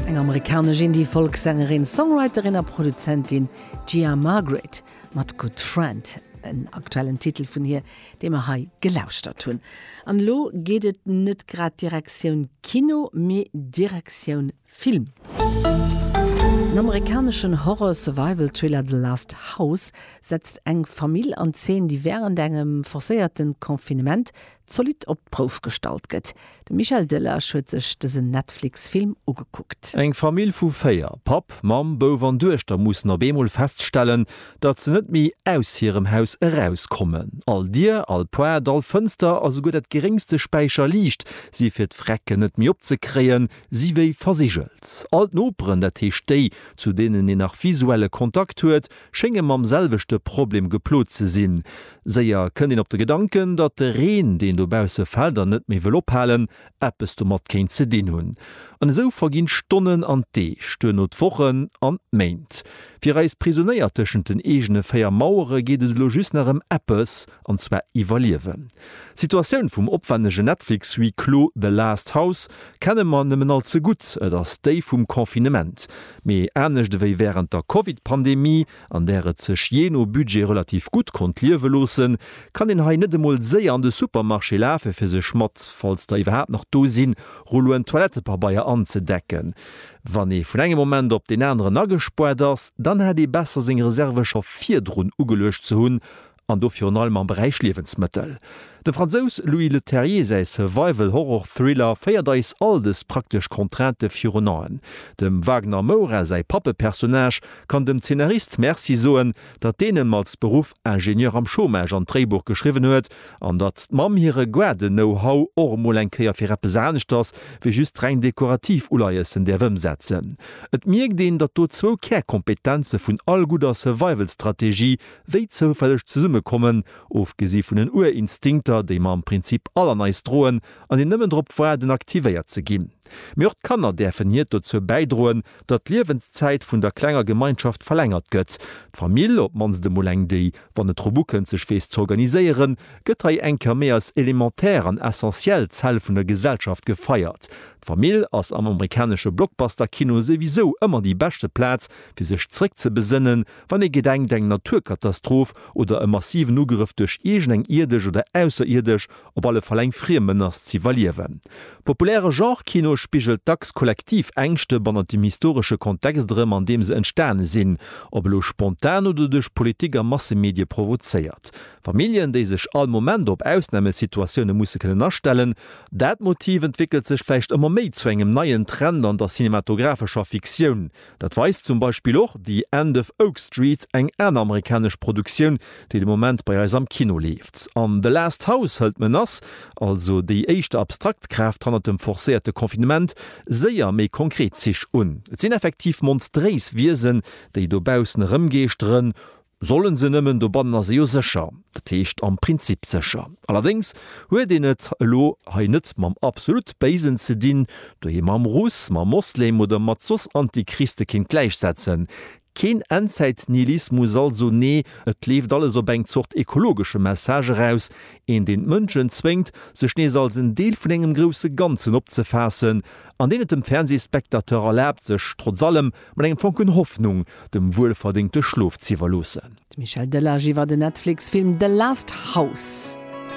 Eng amerikanesch Indie-Folksängerin, Songwriterin a Produzentin, d'Gia Margaret mat Good Friend, en aktuellen Titel vun hir, dee mer hei gelauschtert hunn. An elo geet et net grad Direktioun Kino, mee Direktioun Film. Den amerikaneschen Horror-Survival-Thriller The Last House setzt eng Famill an Zeen, déi wärend engem forcéierte Confinement zolidd op d'Prouf gestallt gëtt. De Michel Delage huet sech dësen Netflix-Film ugekuckt. Eng Famill vu véier, Papp, Mamm, Bouf an Duechter, mussen op eemol feststellen, datt se net méi aus hirem Haus erauskommen. All Dier, all Poart, all Fënster a souguer dat geréngste Späicherliicht si fir d'Vrecken net méi opzekréien, si wéi versigelt. All d'Noperen, dat heescht déi, zu deenen een nach visuelle Kontakt huet, schénge mam selwechte Problem geplot ze sinn. Séier kënnt een op de Gedanken, datt de Reen, deen dobausse fält an net méi wëll ophalen, eppes domat kéint ze dinn hunn. An esou verginn d'Stonnen an d'Deeg, duerno d'Wochen an d'Méint. Fir eis Prisonéier tëschent den eegene véier Mauere geet et elo just nach ëm eppes, an zwar iwwerliewen. D'Situatioun vum opwännegen Netflix-Huis clos The Last House kenne mer nëmmen all ze gutt, et ass déi vum Confinement, mee anescht ewéi wärend der Covid-Pandemie, an där et sech jee no Budget relativ gutt konnt liewe loossen, kann een hei net emol séier an de Supermarché lafe fir sech mat, falls der iwwerhaapt nach do sinn, Rulloen Toilettepabeier anzedecken. Wann ee vun engem Moment op deen aneren agespuart ass, dann hätt ee besser seng Reserve scho virdrun ugeluecht ze hunn an do virun allem am Beräich Liewensmëttel. Dem Fransous Louis Leterrier säi Survival-Horror-Thriller féiert eis all dës praktesch Contraintë virun Aen. Dem Wagner Moura säi Pappepersonnage kann dem Zeenarist Merci soen, datt deen em als Beruff Ingenieur am Chômage an d'Dréibuch geschriwwen huet, an datt d'Mamm hire Guarde-Know-How och emol eng Kéier fir eppes aneschters wéi just reng dekorativ Uleiessen däerf ëmsetzen. Et mierkt een, datt do zwou Kärkompetenze vun all gudder Survival-Strategie wéi zoufälleg zesummekommen, ofgesi vun den Urinstinkter, déi mer am Prinzip all an eis droen an déi nëmmen drop waarden, aktivéiert ze ginn. Mee och d'Kanner däerfen hiert dozou bäidroen, datt d'Liewenszäit vun der klenger Gemeinschaft verlängert gëtt. D'Famill, op d'mannst emol eng, déi, wann et drop ukënnt, sech weess z'organiséieren, gëtt hei eng Kéier méi als elementär an essentiell Zell vun der Gesellschaft gefeiert. D'Famill ass am amerikanesche Blockbuster-Kino souwisou ëmmer déi beschte Plaz, fir sech zréckzebesënnen, Wann ee gedenkt, eng Naturkatastroph oder e massiven Ugrëff duerch iergend eng ierdesch oder ausserierdesch, op alle Fall eng friem Menace ze iwwerliewen. Populäre Genre-Kino spigelt dacks kollektiv Ängschte bannent dem historesche Kontext erëm, an deem se entstane sinn, ob elo spontan oder duerch Politik a Massemedie provozéiert. Familljen, déi sech all Moment op Ausnamesituatioune musse kënnen astellen. Dat Motiv entwéckelt sech vläicht ëmmer méi zu engem neien Trend an der cinematographescher Fiktioun. Dat weist zum Beispill och The End of Oak Street, eng aner amerikanesch Produktioun, déi de Moment bei eis am Kino leeft. An The Last House hëlt d'Menace, also déi éischt abstrakt Kraaft hannert dem forcéierte Confinement, séier méi konkret Zich un. Et sinn effektiv monstréis Wiesen, déi dobaussen erëmgeeschteren. Sollen se nëmmen, dobannen ass ee jo sécher, dat heescht am Prinzip sécher. Allerdéngs huet een et elo hei net mam absolut Béisen ze dinn, dohier mam Russ, mam Moslem oder mat soss Antichriste kéint gläichsetzen. Keen Endzäit-Nihilismus also, nee, et leeft alles op eng Zort ekologesche Message eraus, een deen d'Mënschen zwéngt, sech nees als en Deel vun engem grousse Ganzen opzefaassen, an deen et dem Fernsehspectateur erlaabt, sech trotz allem, Mat engem Fonken Hoffnung, dem wuelverdéngte Schlof z'iwwerloossen. D'Michèle Delage iwwer den Netflix-Film The Last House.